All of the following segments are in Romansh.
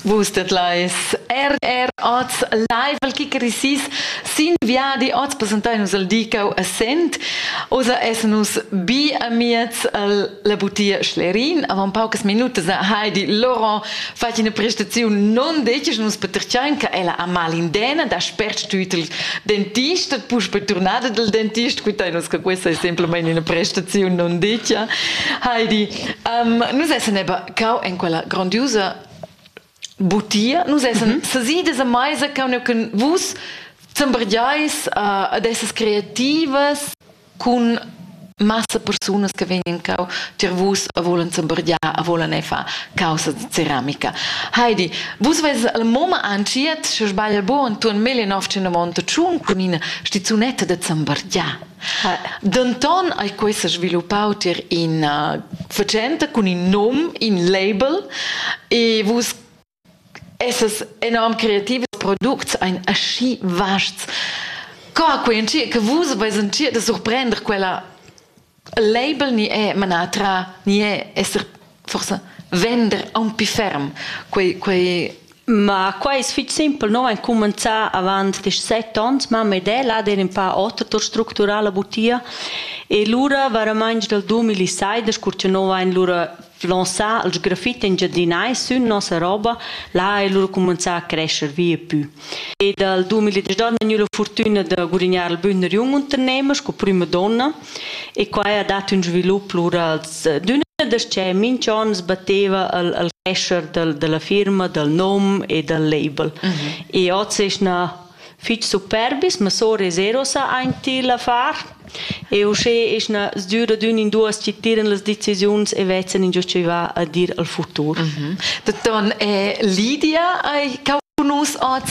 Vus det leis RR Oz live al kicker isis sin viadi oz presentai nus al Dicau a Sent. Osa essen nus bi amiez la butia Schlerin. Avant paucas minutas a Heidi Laurent fat ina prestaziun non decis nus petercian che ella ha mal in dena da spert tut il dentist et pus per turnada del dentist quittai nus che questa è semplicemente una prestazione non dicia. Heidi Um, nus essan eba cau en quella grandiusa butia. Nus essan mm -hmm. sesidas a meisa cau neu cun vus sembergiais uh, ad essas creativas cun massa persunas che vegnan cau tier vus a volen sembergiar, a volen ei fa causa de ceramica. Heidi, vus ves al moma anciet, se sbagl bo, Anton Melinov ce ne monta tschun cun ina stizunetta de sembergiar. Denton ei quei sesviluppau tier ina fatschenta cun in num, in label e vus essas enorm creativs, products ein aschi vasts. Co ha quei entschiet che vus veis entschiet da surprender quella il label ni è manar tra ni è esser forsa vender aunc pli ferm quei quei Ma quai es fich simpel, no vain cumanzà avant quist set ons, mamma ed el ha der ün pa oter tour structurà la butia e lura varamaing dal dumilisaider, cur cha no vain lura flonzà il sgrafit engiadinais sün nossa roba, là ha el lura cumanzà a crescher vi e pü. E dal dumiladesch do ha'l gnü la furtüna da gurignar il bun ün unternehmer sco prüma donna E quai ha dat ün svilup plurals. D'üna das-cha minch on sbatteva al al crescher dal da la firma, dal nom e dal label. E hoz es na fich superbis, ma sora e zero sa aint il affar. E uschè es na sdüra d'ün in duos chi tiran las decisiuns e vezzen ingio chi va a dir al futur. Dottor Lydia, cau nus oz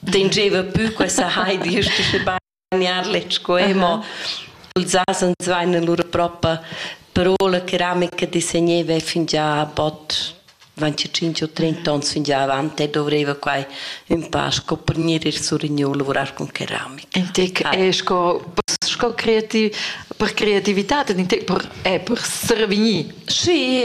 Dingeva pü questa Heidi ist schon bagnar letg mo ils asens vain lur propa parola ceramica disegneva fingià bod 25 o 30 ans fin già avanti e dovreva quai un pa sco per gnir ir sur in lavorar con ceramica. In tec è sco, sco creativ, per creatività, in tec per, è per survegnir. Sì,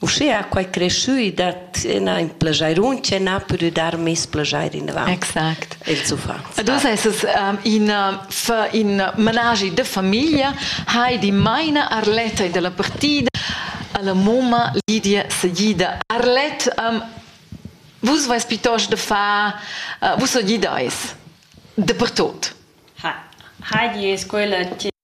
Uschea quai creschü dat üna in plajairun chi n'ha pudü dar meis plajair inavant. Exact. Ils uffants. Ad uss es es um, in fa in managi da famiglia, Heidi maina Arletta da la partida, a la mumma Lidia Sagida. Arlett, um, vus vais pitost da far, uh, vus sagidais dapertot. Heidi es quella chi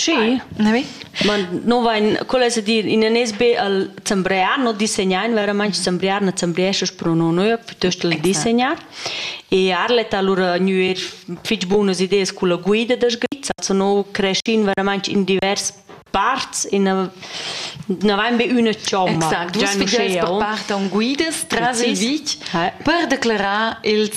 Sì, ne vi? Ma no vain, quel es a dir, in anes be al zambriar, no disegnain veramaing, zambriar na zambriescha's però no nua, piuttost al disegnar. E Arlet ha lura gnüer fich bunas ideas culla guida da sgrizza, so no creschin veramaing in divers parts, in na vain be üna chomma. Exact, già nus fideis per part on guidas tras il vitg per declarar ils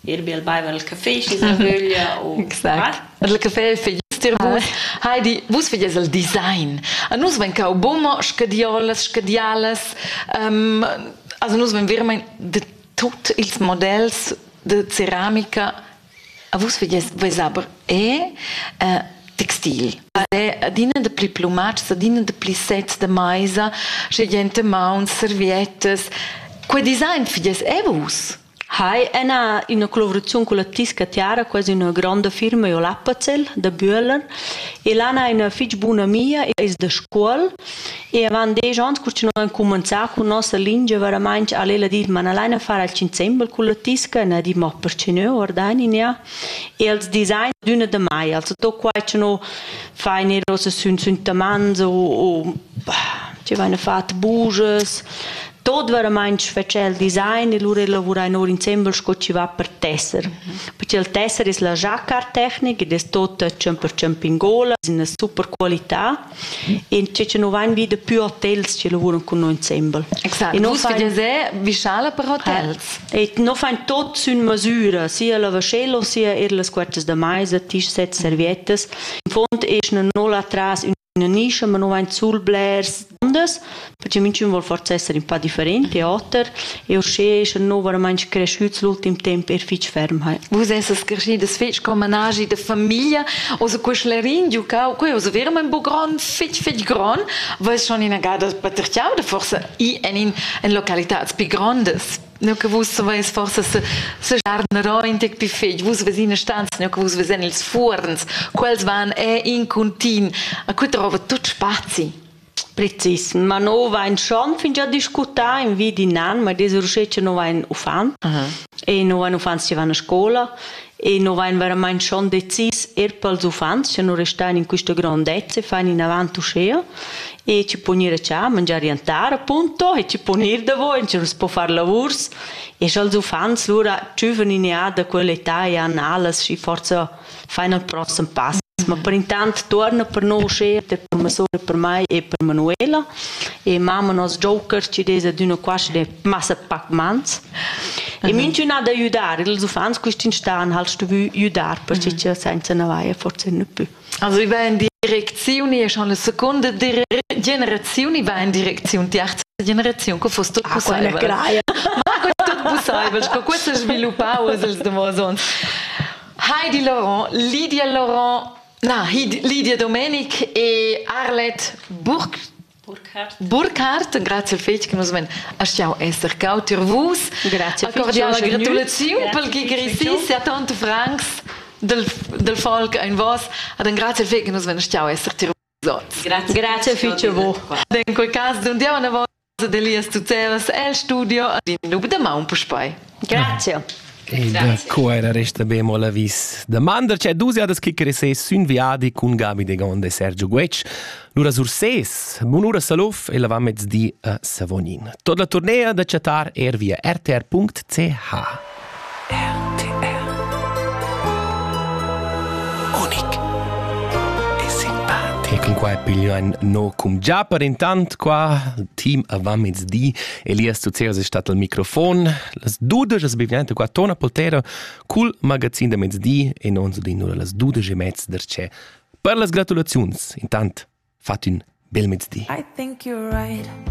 Il bil baiva il café, schi sa vöglia u Exact. Il café fai dir vus. Heidi, vus vedies il design. A nus vegn cau bumma scadiolas, scadialas. Um, also nus vegn vermein de tut ils models de ceramica. A vus vedies vess aber e eh, textil. Adina de pli plumats, adina de pli sets de maisa, sche gente mauns, serviettas. Quei design fidies e vus? Hai ena üna collavuraziun culla Tisca Tiara, quasi üna gronda firma io l'Appazell da Bühler e là n'ha ina fich buna amia, ais da Scuol e avant desch ans cur chi no han cumanzà cun nossa lingia veramainch al ella dit ma na laina far alch insembel culla Tisca, na dit ma perche no, ordainin ja e als design d'üna da mai, also tot quai cha no fain eir hoz sün sün tamanz o o bah, chi vaina fat bujas, tot veramaint fetscha il design e lura lavura in or insembel sco chi va per tesser. Perché il tesser es la giacartechnica ed es tot 100% in gola, es üna super qualità e che chi nu vain vi da pü hotels chi lavuran cun noi insembel. Exact. E nus fain... Vischala per hotels. E no fain tot sün masüra, sia la vascello, sia er las quartas da maisa, tisch set serviettas. In fond es no là tras ün Ne nischa, ma nu vain sul blers duondas, perche minchün voul forsa esser ün pa different e oter e uschè eschan nou varamaing creschüts l'ultim temp eir fich ferm hai. Vus essas creschidas fich col managi da famiglia, oza que sclerin giocau, que oza verament bo grand, fich fich grand, vais schon inagada paterchiauda forsa i en in, in localitats pi grandas. Nu che vus saveis forsa sejar narointec pi fetg, vus ves ina stanza, nu che vus vesan ils fuorns, quels van è in continu, a cui trova tut spazi. Precis, ma no vain schon fingià discutà in vi d'in an, ma des uschè che no vain uffant e no vain uffants che van a scola E nu vain veramaing schon decis eir pels uffants cha nu restan in quista grondezza e fan inavant uschea e chi pon ir a chà, mangiar jantar appunto e chi pon ir davo in tschiervs po far lavurs e scha'ls uffants lura giuven in eà da quella età e han alas schi forsa fain il prossem pass. Ma per intant tuorna per no uschea per masura per mai e per Manuela e mamma nos joker chi'd es adüna qua schi massa pac mans. E mintuna da judar, ils uffants questi stan halt stuvü judar perché senza na vaia forse ne più. Also i va in Direkzioni e schon la seconda generazione va in Direktion, die erste Generation, che fosse tutto possibile. Ma che tutto possibile, che questo sviluppava els davos ons. Heidi Laurent, Lydia Laurent, na, Lydia Domenik e Arlette Burg Burkhardt. Burkhardt, grazie fetg che nus men astgau esser cau tier vus. Grazie. Una cordiala gratulazione per chi grissis a tanti francs del, del folk in vos. Ad un grazie fetg che nus men astgau esser tier vus. Grazie. Grazie fece vo. In quel caso d'un dia una volta delias tu cevas el studio ad in nub de maun puspai. Grazie. Ed co era resta bemo la vis demanda c'è dus jadas che crese sün viadi cun Gabi de Gonde e Sergio Guec. Lura sur ses, bunura Salouf e la va mezdi a Savonin. Tot la tournea da chatar er via rtr.ch. RTR Unic e simpatico. E qua è piglio un no cum già per intant qua team a va mezdi Elias Tuceras è stato al microfon. Las dudesch es bivente qua Tona Poltera cul magazin da mezdi e non so di las dudesch e mezza der c'è. Per las gratulaziuns, intant, fat un bel mezdi. I think you're right.